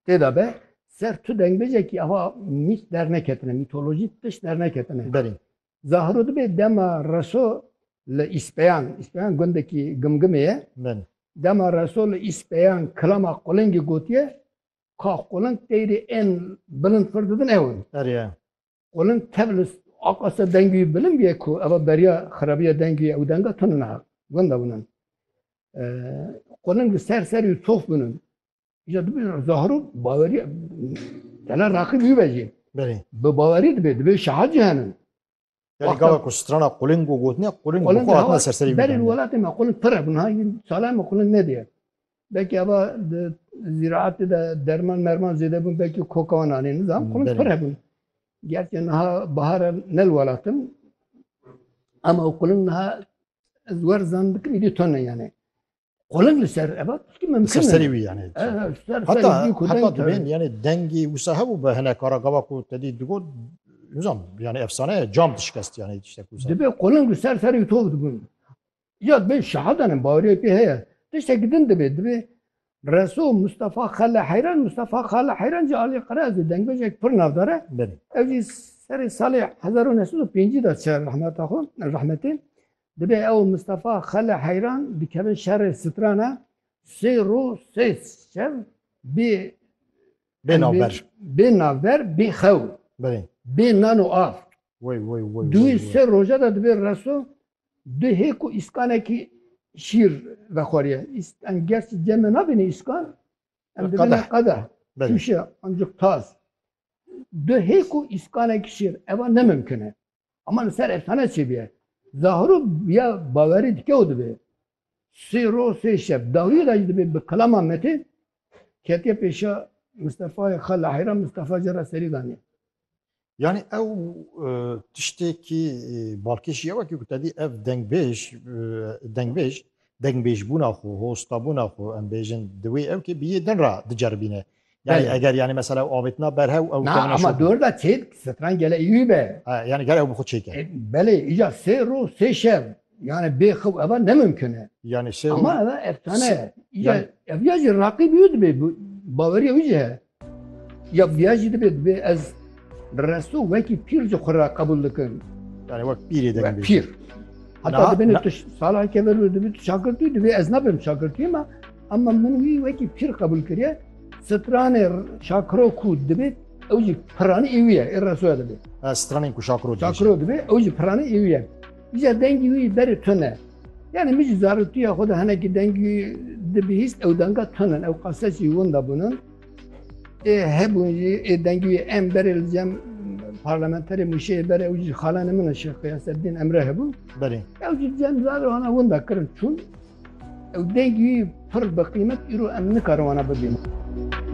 Têda be ser tu dengbêjekî ava mît derneketine, mîtolojî tişt derneketine. Berê. Zahiro dibê dema reso li Îspeyan, Îspeyan gundekî Gimgimê ye. Berê. Dema reso li Îspeyan kilama qulingî gotiye ka quling teyrê ên bilind fir didin ew in. Berê. Quling tev li aqa ser dengî wî bilind bûye ku eva beriya xirabiya dengî wî ye. Ew denga tune niha gunda bûnin. Quling li ser serî û tof bûnin. Îca dibê zahiro bawerî tena raqîb wî be jî. Belê. Bi bawerî dibê dibê şehat jî henin. Yani Wexta- gava ku strana quling û gotine quling Quling bu xwe hatine hewa- serserî Berê bidane. welatê me qulin pir e bin hay salay me qulin nediye. Belkî eva di zîraatê de derman merman zêde bin belkî koka wan anê nizam qulin Belê. pir hebin. Gerçi niha bahar e nel welatin ama o qulin niha ez wer zan dikim îdî tone yani. Kolin li ser eva tişkî mimkin. Ser serî wî yani. Heta heta dibên yani dengî wisa hebû be hene kara gava ku te dî digot nizam yani efsaneye cam dişkest yani tiştek wisa. Dibê kolin li ser serî tov dibûn. Ya dibê şehadanên baweriyê pê heye. Tiştek din dibê dibê Reso Mustafa Xele Heyran Mustafa Xele Heyran jî alî qerazê dengbêjek pir navdar e. Ev jî serê salê 1905 de çer rehmeta xwe rehmetê Dibe ew Mistefa Xele heyran dikevin şerê strana sê rû sê şev bê Bê navber. Bê navber bê xew. Belê. Bê nan û av. Wey wey wey. Duyê sê roja da dibê reso du hêk û îskanekî şîr vexweriye. Em gerçî ceme nabîne îskan em dibîne qede. Tûşe ancik tas. Du hêk û îskanekî şîr eva nemimkine. Ama li ser efsane çê bûye. Zahiro ya bawerî dike û dibe. Sê roj sê şev dawiyê de jî dibe bi kilama metê ketiye pêşa Mistefayê xwe li heyra Mistefa jî re serî daniye. Yanî ew tiştekî balkê jî ew e ku tevî ev dengbêj dengbêj dengbêjbûna xwe, hostabûna xwe em bêjin di wê ew kê bi yê din re diceribîne. Yani Belê. eger yani mesela ew avêtina berhew ew Na kemîna ama şopî. dor da çêd stran gele î be. Ha, Yani gel ew bi xwe çêke. E, Belê îca sê rû sê şev. Yani bê xew eva ne mümkün e. Yani sê Ama eva efsane e. İca Yani- ev ya jî raqî bîyo dibê bu baweriya wî jî he. Ya biya jî dibê dibê ez resto wekî pîr ji xwe ra qebûl dikim. yani wek pîrê Ve degin bê. pîr. Na- Heta dibê na- tu salaheke ver dibê tu şakirtî dibê ez nabim şakirtî ma Ema min wî wekî pîr qebûl kiriye. Stranê Şakiro ku dibê ew jî piranî ê wî ye, ê resoya dibê. Stranên ku Şakiro dibê. Şakiro dibê ew jî piranî ê wî ye. Îja dengî wî berê tune. Yani min jî zaroktiya xwe de hinekî dengî dibihîst ew denga tune ew qasesî winda bûnin. Ê hebûn jî ê dengî wî em berê li cem parlamenterê mûşeyê berê ew jî xalanê min e Şêx Qeyaseddîn Emre hebû. Berê. Ew jî cem zar hana winda kirin çûn Ew dengî pir bi qîmet îro em nikarin wana bibînin.